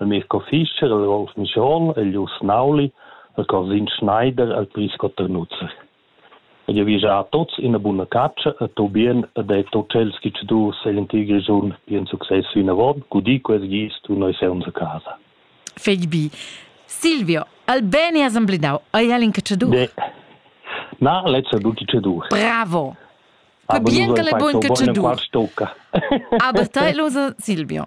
El Mirco Fischer, el Wolf Michon, el Jus Nauli, el Cosin Schneider, el Pris Cotternutzer. Ed io vi già a tots ina buna caccia e to bien e detto tschels chi ci du se l'antig regiun bien succes fino avon, gudi ques gis tu noi seunz a casa. Fegli bi. Silvio, al bene assemblidau, ai Helen che ci du? De. Na, letzter du chi ci du. Bravo. Pa bien che le bun che ci du. Aber tai, Lusa Silvio.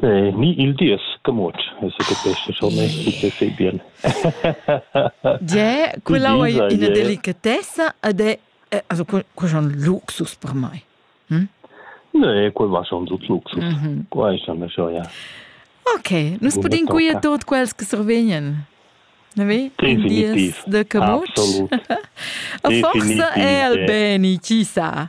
Ni il dies camuot secapescha schon ei tut fei bien. Gie, quella ei ina delicatessa ed è also quella ein luxus per mei. Ne, quel va schon sut luxus. Quei ei schon schon ja. Okay, nus podem cuir tot quels che survegnan. Ne vi? Definitiv. De camut. A forza è al beni, chi sa.